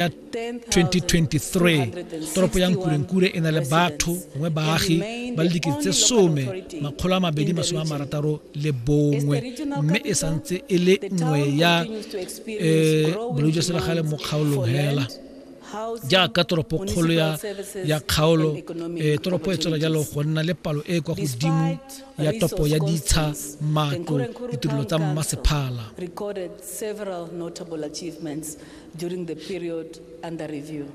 ya 2023 toropo ya nkurenkure e na le batho gongwe baagi ba le dikete tse some makgolo a mabedi masome a marataro le bongwe mme e santse e le nngwe ya um bolwetse jwa selegale mo kgaolong hela jaaka toropo kgolo ya ya kgaolo e toropo e tswela jalo go nna le palo e e kwa godimo ya topo ya ditsha matlo ditirelo tsa mmasephala during the period under review.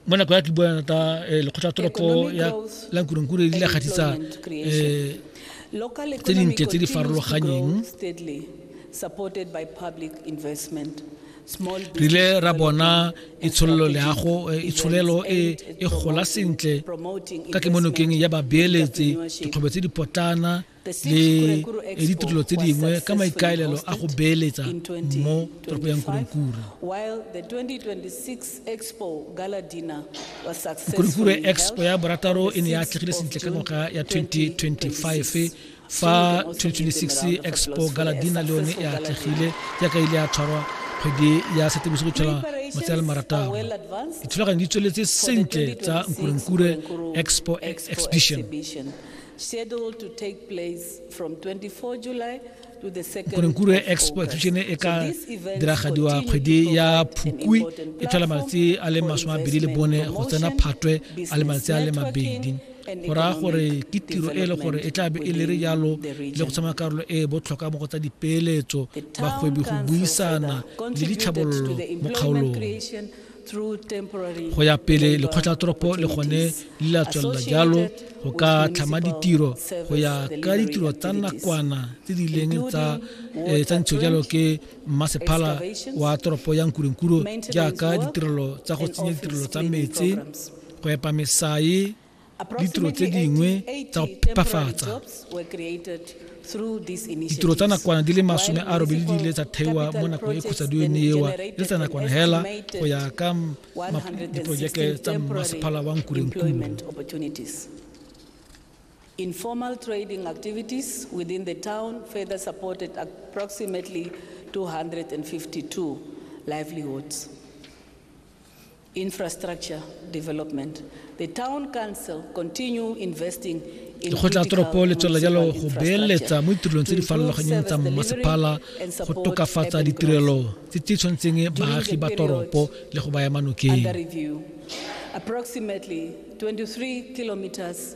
mo nako ya ke bua thata eh, lekgotla toropo ya la nkurenkure di la gatisa um eh, tse dintle tse di farologanyeng re ile ra bona itsholelo leago eh, itsholelo e e gola sentle ka kemonokeng ya babeeletsi dikgwebo tse di potlana le ditirelo tse dingwe ka maikaelelo a go beeletsa mo toropo ya nkurenkure nkurenkure expo ya borataro e ne ya atlegile sentle ka ngwaga ya 2025 fa 2026 expo galadina le yone e atlegile jaaka ile ya tshwarwa kgwedi ya setemose go tshwara matsatsi a le marataro dithulaganyo di tsweletse sentle tsa nkurenkure expo exhibition korenkuru e expo exhibition e ka diragadiwa kgwedi ya phukwi e tlhola malatsi a le masome mabedi le bone go tsena phatwe a le malatsi a le mabedi go raya gore ke tiro e le gore e tla be e le re jalo le go tsamaya karolo e e botlhokwa mo go tsa dipeeletso bagwebi go buisana le ditlhabololo mo kgaolong go ya pele lekgotlatoropo le gone le la tswelela jalo go ka tlhama ditiro go ya ka ditiro tsa nakwana tse di leng tsa eh, tsa ntsho jalo ke mmasephala wa toropo ya nkurenkuro jaaka ditirelo tsa go tsenya ditirelo tsa metsi go epa mesae ditiro tse dingwe tsa go phepafatsa ditiro tsa nakwana di le masome a robedi di ile tsa theiwa mo nakong e khutsadiwe ne ewa le tsa nakwana hela go ya ka diporojeke tsa mmasephala wa nkurenkuru Informal trading activities within the town further supported approximately 252 livelihoods. infrastructure development. The town council continue investing in Lekgotla toropo le tswelela jalo go beeletsa mo ditirelong tse di farologanyeng tsa mmasepala go tokafatsa ditirelo tse di tshwanetseng baagi ba toropo le go baya manokeng. Approximately 23 kilometers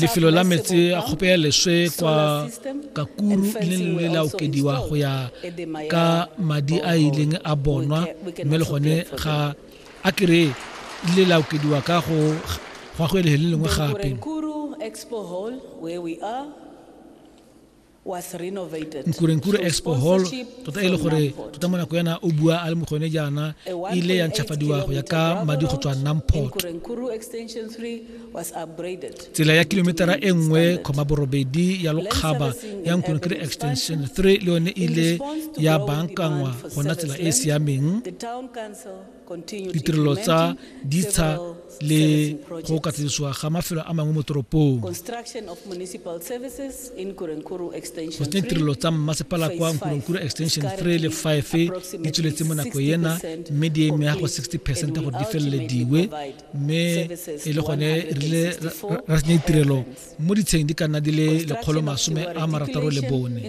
lefelo la metse a kgope ya leswe kwa kakuru le le la okediwa go ya ka madi a ileng a bonwa mme le gone ga a kere le la okediwa ka go gwa go ele le lengwe gape Nkurenkure Expo Hall tota e le gore tota mo nako yana o bua a le mo gone jaana e ile ya ntšhafadiwa go ya ka madi go tswa Namport. Tsela ya kilometara e nngwe kgoma borobedi ya lokgaba ya Nkurenkure Extension 3 le yone e ile ya bankangwa gona tsela e e siameng. ditirelo tsa ditsha le go katlisiwa ga mafelo a mangwe mo toropong go tsenya ditirelo tsa mmasepala kwa nkoronkuru extension 3 le 5 di tsweletse mo nako ena mme di emega go 60 percent gore di felelediwe mme e le gone rile ra tsenya ditirelo mo ditsheng di ka nna di le lekgolo masome a marataro le bone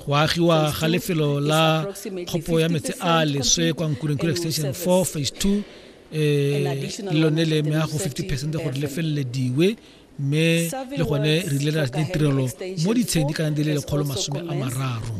go agiwa ga lefelo la kgopo ya metsi a leswe kwa nkurenkuru extension 4 phase 2 um eh, lone le mea go 50 percent gore le felelediwe mme le gone re ile ra ditirelo mo ditsheng di ka nna di le lekgolo masome a mararo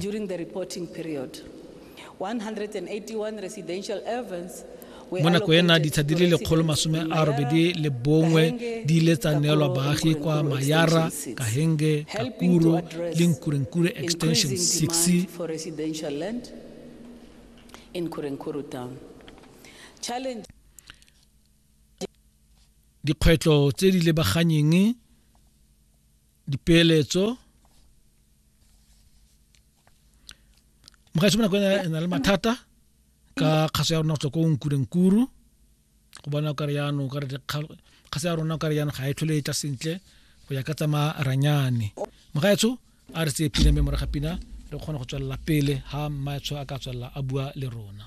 181 residential ovens mo nako ena ditsha di le lekgolo masome a robedi le bongwe di ile tsa neelwa baagi kwa mayara kahenge kakuro le nkurenkure extension 6 dikgwetlho tse di lebaganyeng dipeeletso mogaetsho bonako e na le mathata ka kgaso ya rona go tswa ko nkurenkuru go bona o kare yaanong o kare kgaso ya rona o kare yaanong ga e tlhole e tla sentle go ya ka tsamaya ranyane mogaetsho a re tseye pina mme moraga pina re kgone go tswelela pele ha mmaetsho a ka tswelela a bua le rona